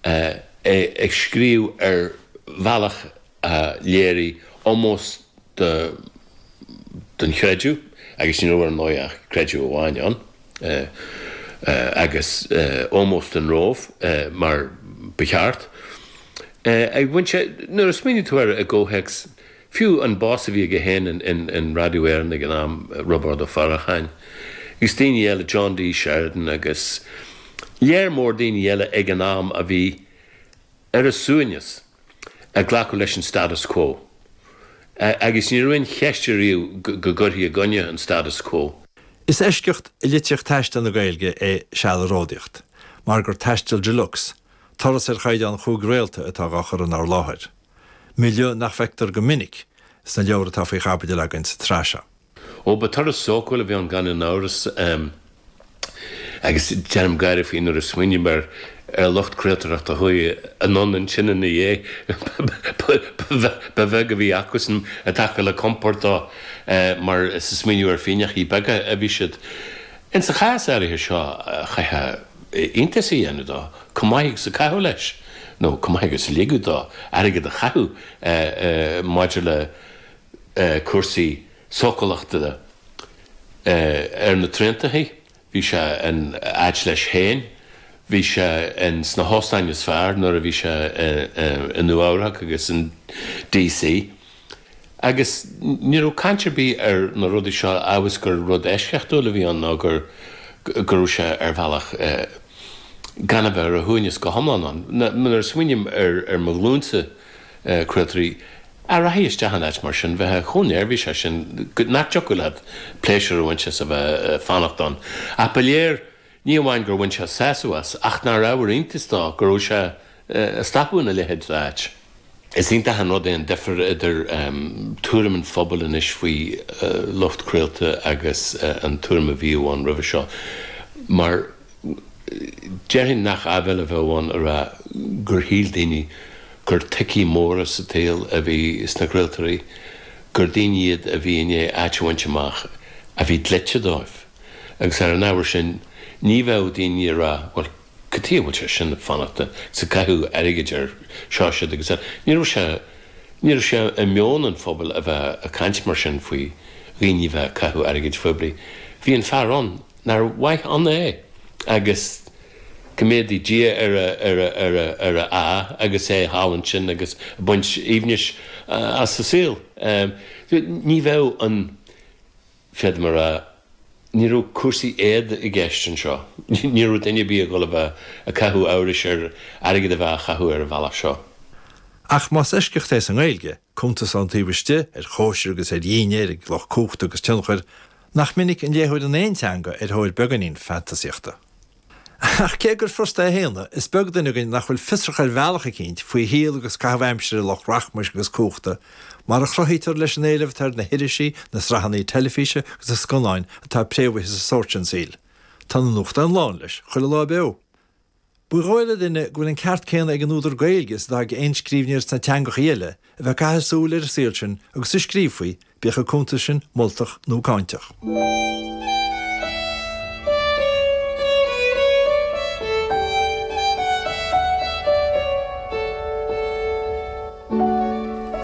É ag scríobh ar bhealach a léirigh ómós do don chreideamh, agus ní raibh ar ndóigh ach creideamh amháin ann, agus ómós don Róimh mar ba cheart. Ach bhain sé, nuair a smaoinigh tú air i gcomhthéacs Fiú an boss a bhí aige féin in Radio Éireann ag an am, Roibeárd Ó Faracháin, agus daoine eile, John D. Sheridan agus lear mór daoine eile ag an am a bhí ar a suaimhneas ag glacadh leis an status quo. Agus ní raibh aon cheist ariamh go gcuirfí i gcoinne an status quo. Is eisceacht i litríocht taistil na Gaeilge é Seal ag Ródaíocht, mar gur taisteal de luxe, turas ar chaighdeán chúig réalta atá dhá chur inár láthair. milieu nach bhfeictear go minic sna leabhair atá faoi chaibidil againn sa tsraith seo. Ó ba turas sócúil a bhí ann gan aon amhras, agus déanaim gáire faoi nuair a smaoiním ar lucht craoltóireachta a chuaigh anonn ansin ina dhiaidh, ba bheag a bhí acusan i dtaca le compord dó, mar is ag smaoineamh ar phingneachaí beaga a bhí siad. Ins an chás áirithe seo, chaithfeá. iontas a dhéanamh dó, chomh maith agus a caitheadh leis, nó chomh maith agus a ligeadh dó airgead a chaitheamh maidir le cúrsaí sócúlachta ar na traentachaí. Bhí sé in áit leis féin, bhí sé in sna hóstáin is fearr nuair a bhí sé i Nua Eabhrach agus in D.C. Agus ní raibh caint ar bith ar na rudaí seo amhail is gur rud eisceachtúil a bhí ann nó gur go raibh sé ar bhealach gan a bheith ar a shuaimhneas go hiomlán ann. Nuair a smaoiním ar mo ghlúinse craoltóirí a rachaidh isteach in áit mar sin, bheifeá chomh neirbhíseach sin nach dtiocfadh leat pléisiúr a bhaint as a bheith ag fanacht ann. Ach ba léir. Ní amháin gur bhain sé sásamh as, ach nár ábhar iontais dó go raibh sé ag stopadh ina leithéid d'áit. Is iontach an rud é an difear idir tuairim an phobail anois faoi lucht craolta agus an tuairim a bhíodh ann roimhe seo, mar déarfainn nach áibhéil a bheadh ann a rá gur shíl daoine gur toicí móra sa tsaol a bhí sna craoltóirí, gur daoine iad a bhí i ndiaidh áit a bhaint amach a bhí dlite dóibh. agus ar an ábhar sin ní bheadh daoine ag rá, bhuel, cad tuighe a bhfuil sé sin ag fanacht agus ag caitheamh airgid ar seo siud agus eile. Ní raibh sé, ní raibh sé i meon an phobail a bheith ag caint mar sin faoi dhaoine bheith ag caitheamh airgid phoiblí. Bhí an fear ann nár mhaith ann é agus go méadaí Dia ar a, ar a, ar a, ar a ádh agus é thall ansin agus ag baint aoibhnis as a saol. Ní bheadh an. Feadar mara. Ní raibh cúrsaí éada i gceist anseo. Ní raibh duine ar bith ag gol a bheith ag caitheamh amhrais ar airgead a bheith á chaitheamh ar an bhealach seo. Ach más eisceacht é sa nGaeilge, cuntas ann taobh istigh, ar chóisir agus ar dhinnéir ag lucht cumhachta agus tionchair, nach minic an léitheoir in aon teanga ar thóir beagáinín fantasaíochta. Ach cé gur furasta é a shéanadh, is beag duine againn nach bhfuil fiosrach ar bhealach eicínt faoi shaol agus caitheamh aimsire lucht rachmais agus cumhachta, mar a chruthaítear leis an éileamh atá ar na hirisí, na sraitheanna teilifíse agus na scannáin atá préamhaithe sa sórt sin saoil. Tá na nuachtáin lán leis, chuile lá beo. Ba dhóigh le duine go bhfuil an ceart céanna ag an údar Gaeilge is atá ag aon scríbhneoir sna teangacha eile, a bheith ag caitheamh súil ar an saol sin agus a scríobh faoi, bíodh an cuntas sin moltach nó cáinteach.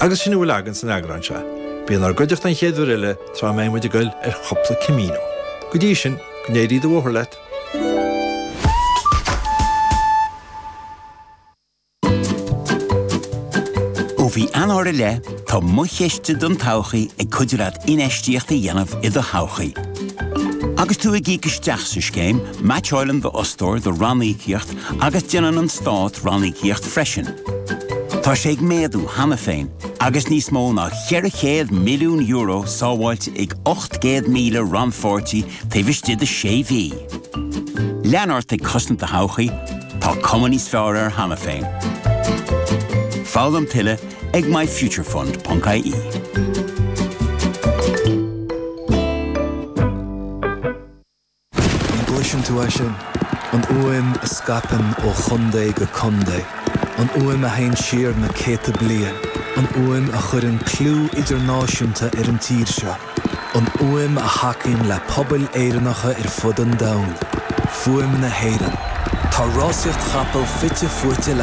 Agus sin a bhfuil againn san eagrán seo. Bí inár gcuideachta an chéad uair eile tráth a mbeidh muid ag gol ar chúpla Camino. Go dtí sin, go n-éirí do bhóthar leat! Ó mhí Eanáir i leith, tá Mo Chiste don Todhchaí ag cuidiú leat infheistíocht a dhéanamh i do thodhchaí. Agus tú ag íoc isteach sa scéim, meaitseáileann d'fhostóir do ranníocaíocht agus déanann an Stát ranníocaíocht freisin. Tá sé ag méadú cheana féin, agus níos mó ná €400 milliún sábháilte ag 800,000 rannpháirtí taobh istigh de sé mhí. Lean ort ag cosaint do thodhchaí, tá cuma níos fearr air cheana féin. Foghlaim tuilleadh ag myfuturefund.ie. An gcloiseann tú é sin? An fhuaim a scaipeann ó chontae go contae. An fhuaim a théann siar na céadta bliain. An fhuaim a chuireann clú idirnáisiúnta ar an tír seo. an fhuaim a thacaíonn le pobail Éireannacha ar fud an domhain, fuaim na hÉireann. Tá rásaíocht chapall fite fuaite le